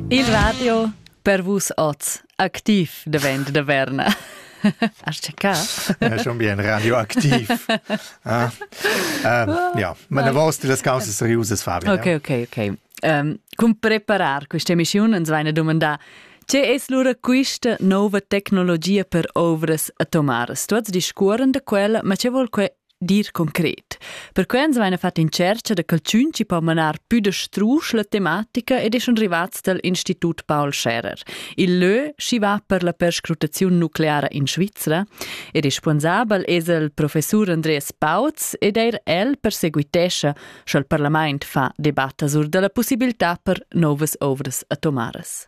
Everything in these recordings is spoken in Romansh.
Il radio per vus oz activ davent da Verna. Hast du gehabt? Ja, schon bien radioaktiv. ah. um, ja, ma una volta das causa seriosas, Fabio. Okay, okay, okay. Um, cum preparar questa emissione uns vai una domanda C'è es lura questa nuova tecnologia per ovras atomaras? Tu has discuoren da quella, ma c'è vuol que dir concret. Perquei ans vaina fat in tschercha da calchün chi po manar pü da strusch la tematica ed es schon rivats dal Institut Paul Scherer, il lö chi va per la perscrutaziun nucleara in Svizra, e responsabel es il professur Andreas Pauz ed eir el perseguitescha, scha'l parlamaint fa debatta sur da la pussibiltà per novas ouvras atomaras.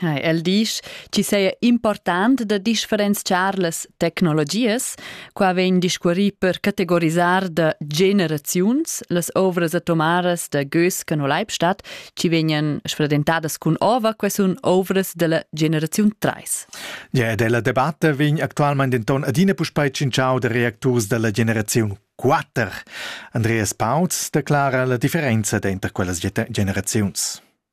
Ha, el disch, chi seja important da differenziar las tecnologias. Qua vegn discuorì per categorisar da generaziuns las ovras atomaras da Gösken o Leibstadt, chi vegnan sfredentadas cun ova, que sun ovras della generaziun 3. Ja, ed la debatta vegn actualmain denton adina puspei tschintschau da reacturs dalla generaziun 4. Andreas Pauz declara la differenza denter quellas generaziuns.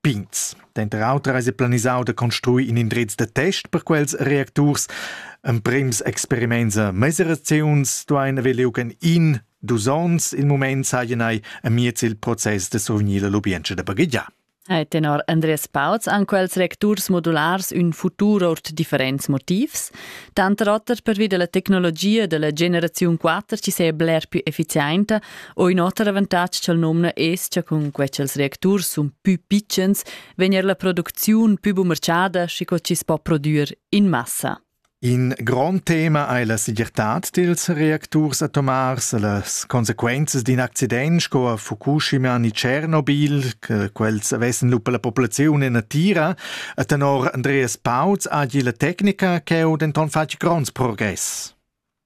pigns. Denter auter eis planisau da construir in indrez da test per quels reacturs. Emprems experiments a mesiraziuns duein haver liug en in dus onns. Il mument seien ei amiez il process de survegnir la lubientscha da baghegiar. E tenor Andreas Pauz han quels recturs modulars ün futur ord differents motivs, tanter oter pervi della tecnologia della generaziun 4 chi se bler più efficienta O in oter avantatg ch'el nomna es cha cun que cha'ls reacturs sun pü pitschens vegn er la producziun pü bumerciada schi co chi's po prodüer in massa. In grond tema ei la segirtad dils reacturs atomars e las consequenzas d'in accident sco a Fukushima ni Tschernobyl, che quels avessen lupa la populaziun en natira. E tenor Andreas Pauz ha la tecnica cheu denton fatg gronds progress.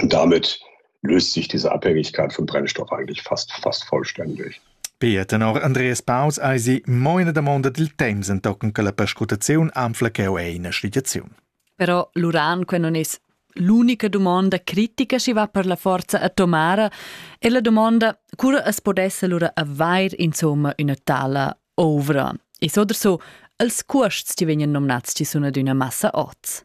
Und damit löst sich diese Abhängigkeit von Brennstoff eigentlich fast, fast vollständig. Pia tenor Andreas Paus ei si moina damonda dil temps entochen che la perscrutaziun anfla cheu eine schligiaziun. Però l'uran que non es l'unica domanda critica si va per la forza atomara e la domanda cura es podesse lura avair insomma una tala ovra. E so oder so, als cuosts ti vegnan nomnats ci sun ad una massa oz.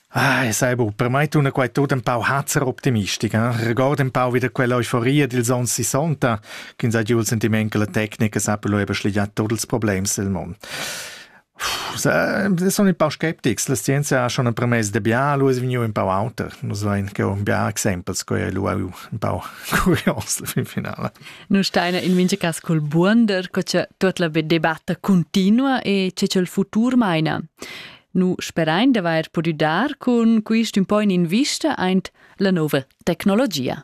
Ah, e sai bu, per mai tuna quai tut ein pau hazzer optimistica, eh? regord ein pau wieder quell'euforia dils ons sessanta, ch'ins ha giu il sentiment che la tecnica sappelo eba schligià tuts ils problems del mond. sono un po' skeptics, la scienza ha schon ein premess de bia, lu es vegniu un po' auter. Nus vain che un bia exempels, coi lu un po' curios fin finale. Nu steina in mincha cas col buonder, co che tot la debatta continua e che il futur meina. Nu sperain d'avair pudü dar cun quist ün po in invista aint la nouva tecnologia.